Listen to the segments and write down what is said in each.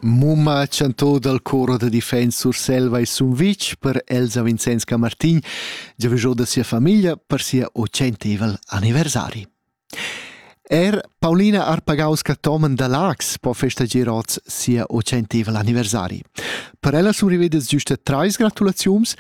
Mumma chantò dal chor da defens Surselva e Sumvitg per Elsa Vincenz Camartin giavüschò da sia famiglia per sia ocentevel anniversari. Er Paulina Arpagaus-Cathomen da Laax po festager oz sia ocentevel anniversari. Per ella survida giusta trais gratulaziuns.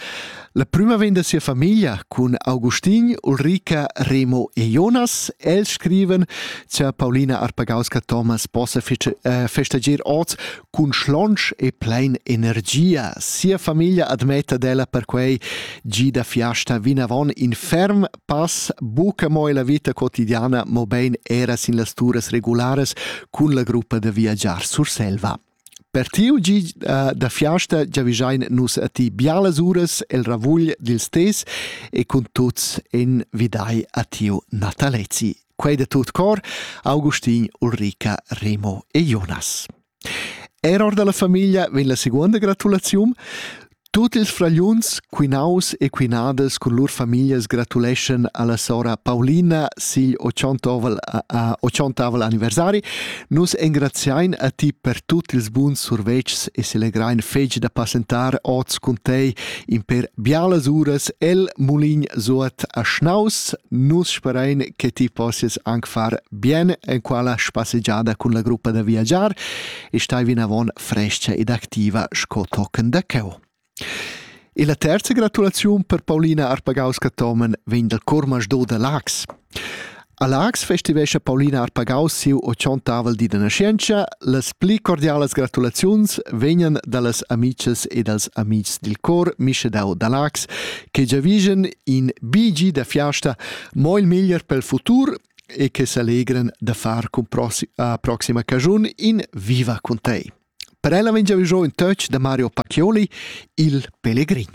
La prima vegn da sia famiglia cun Augustin, Ulrika, Remo e Jonas. Els scriven cha Paulina Arpagauska-Thomas possa eh, festager oz cun schlonch e plein energia. Sia famiglia admetta d'ella perquei gida fiasta vinavon in ferm pass buca mo la vita quotidiana, mobein era sin las turas regulares cun la gruppa da viagiar Surselva. Per tiu gi uh, da fiasta giavischein nus a ti bialas uras el ravugl dils tes e cun tuts en vidai a tiu Natalezi. Quei de tut cor, Augustin, Ulrica, Remo e Jonas. Er ord dalla famiglia vegn la seconda gratulaziun. Tut ils fragliuns, quinaus e quinadas cun lur famiglias gratuleschan alla sora Paulina sigl otschontovel, a otschontavel anniversari. Nus engraziein a ti per tut ils buns survetschs e selegrein fetg da passentar oz cun tei in per bialas uras el mulin suot a Schnaus. Nus sperein che ti possies anc far bien en quella spassegiada cun la gruppa da viagiar e stai vinavon frescha ed activa sco tochen da cheu. E la terza gratulaziun per Paulina Arpagaus-Catomen vegn dal Cormas do da Lax. A Lax festivescha Paulina Arpagaus siu ochontavel di da nascenza. Las pli cordialas gratulaziuns vegnan dallas amices e dals amics dil cor Mischedau da Lax che giavigen in bigi da fiasta mo il meglier pel futur e che selegran da far cun proxi a proxima cagiun in Viva con te. Per ella veggia jo in touch da Mario Pacchioli, il pellegrin.